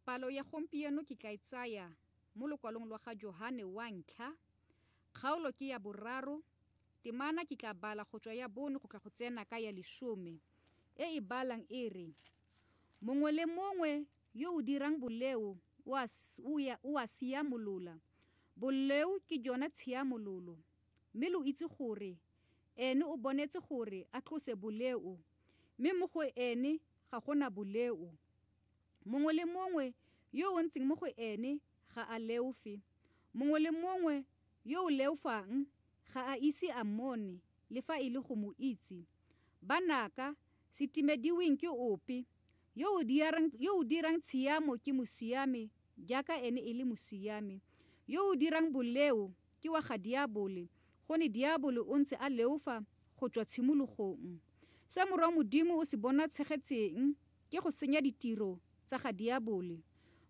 Palo ya gompieno ke tla e tsaya mo lokwalong lwa ga Johane wa ntlha, kgaolo ke ya boraro, temana ke tla bala go tswa ya bone go tla go tsena ka ya lesome, e e balang e re, Mongwe le mongwe yo o dirang boleo o a, o ya, o a siamolola. Boleo ke jona tshiamololo, mme lo itse gore Ene o bonetse gore a tlose boleo, mme mo go Ene Ga go na boleo. Mongwe le mongwe yo o ntseng mo go ene ga a leofe. Mongwe le mongwe yo o leofang ga a ise a mmone le fa e le go mo itse. Banaka, se timediweng ke ope, yo o dirang, yo o dirang tshiamo ke mosiame jaaka ene e le mosiame. Yo o dirang boleo ke wa ga diabole, gone diabole o ntse a leofa go tswa tshimologong. Se Morwa wa Modimo o se bonatshegetseng ke go senya ditiro tsa ga Diabole.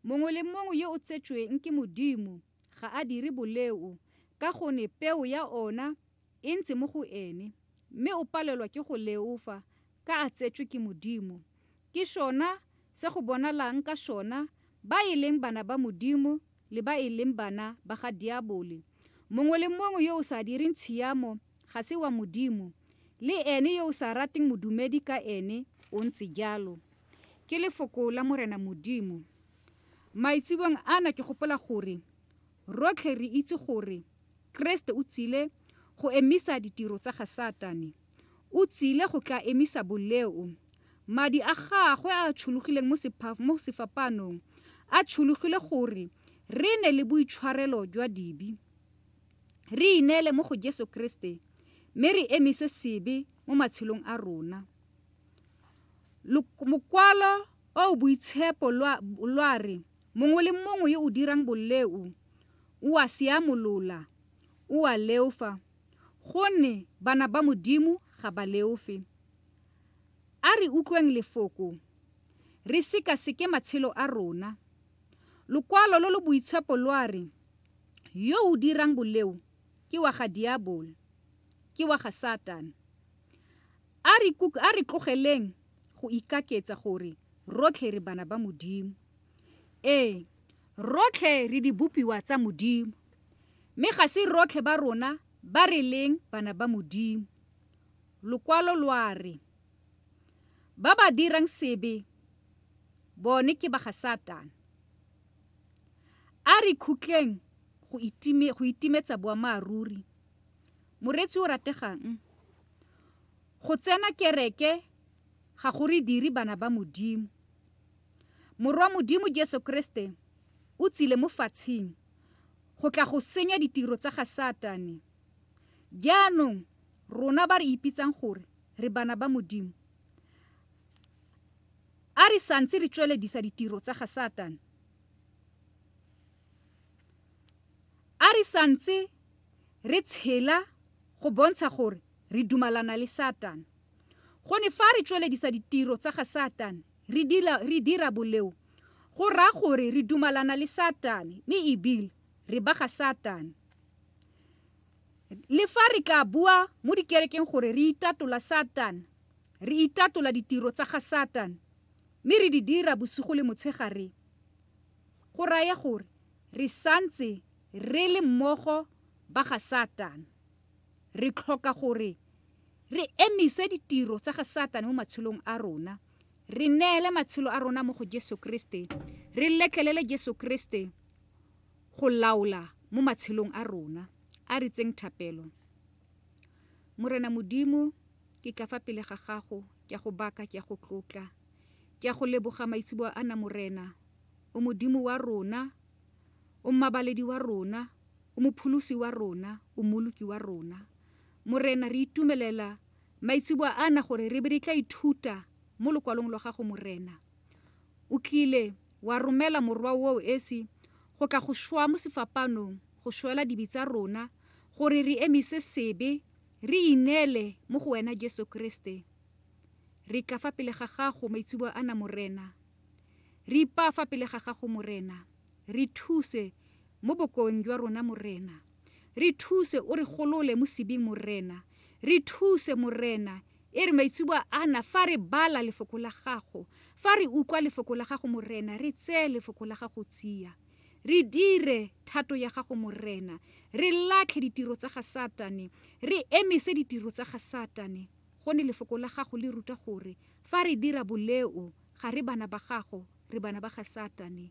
Mongwe le mongwe yo o tsetsweng ke Modimo ga a dire boleo ka gone peo ya ona e ntse mo go ene, mme o palelwa ke go leofa ka a tsetswe ke Modimo. Ke sona se go bonalang ka sona ba e leng bana ba Modimo le ba e leng bana ba ga diabole. Mongwe le mongwe yo o sa direng tshiamo ga se wa Modimo, le ene yo o sa rateng modumedi ka ene o ntse jalo. Ke lefoko la Morena Modimo. Maitsebong ana ke gopola gore rotlhe re itse gore Keresete o tsile go emisa ditiro tsa ga Satane. O tsile go tla emisa boleo. Madi a gagwe a a tshologileng mo sefapaanong a tshologile gore re ne le boitshwarelo jwa dibi, re ineele mo go Jesu Keresete mme re emise sebe mo matshelong a rona. Mokwalo o o boitshepo lwa re, Mongwe le mongwe yo o dirang boleo o a seamolola, o a leofa. Gonne bana ba Modimo ga ba leofe. A re utlweng Lefoko, re sekaseke matshelo a rona. Lokwalo lo lo boitshepo lwa re, Yo o dirang boleo ke wa ga diabolo, ke wa ga Satane. A re tlogeleng go ikaketsa gore rotlhe re bana ba Modimo. Ee, rotlhe re dibopiwa tsa Modimo, mme ga se rotlhe ba rona ba re leng bana ba Modimo. Lokwalo lwa re, ba ba dirang sebe bone ke ba ga Satane. A re khutleng go itime go itimetsa boammaaruri. Moreetsi o rategang, go tsena kereke ga go re dire bana ba Modimo. Morwa Modimo Jesu Kriste o tsile mo fatshing go tla go senya ditiro tsa ga Satane. Jaanong rona ba re ipitsang gore re bana ba Modimo, a re santse re tsweledisa ditiro tsa ga Satane. A re santse re tshela go bontsha gore re dumalana le Satane. Gone fa re tsweledisa ditiro tsa ga Satane, Re dira, re dira boleo, go raya gore re dumalana le Satane, mme ebile re ba ga Satane. Le fa re ka bua mo dikerekeng gore re itatola Satane, re itatola ditiro tsa ga Satane, mme re di dira bosigo le motshegare, go raya gore re santse re le mmogo ba ga Satane. Re tlhoka gore re emise ditiro tsa ga Satane mo matshelong a rona, re neele matshelo a rona mo go Jesu Kriste, re letlelele Jesu Kriste go laola mo matshelong a rona. A re tseng thapelo. Morena Modimo, ke tla fa pele ga gago, ke a go baka, ke a go tlotla, ke a go leboga maitseboa ana Morena, o Modimo wa rona, o mmabaledi wa rona, O Mopholosi wa rona, O Mmoloki wa rona. Morena, re itumelela maitseboa ana gore re be re tla ithuta mo Lokwalong lwa Gago, Morena. O tlile wa romela Morwa woo esi go tla go šwa mo sefapanong, go šwela dibe tsa rona, gore re emise sebe, re ineele mo go Wena, Jesu Kriste. Re tla fa pele ga Gago maitseboa ana, Morena. Re ipaa fa pele ga Gago, Morena. Re thuse mo bokoeng jwa rona, Morena. Re thuse o re golole mo sebing, Morena. Re thuse, Morena, e re maitseboa ana fa re bala Lefoko la Gago, fa re utlwa Lefoko la Gago, Morena, re tseye Lefoko la Gago tsia. Re dire thato ya Gago, Morena. Re latlhe ditiro tsa ga Satane. Re emise ditiro tsa ga Satane. Gone Lefoko la Gago le ruta gore fa re dira boleo, ga re bana ba Gago, re bana ba ga Satane.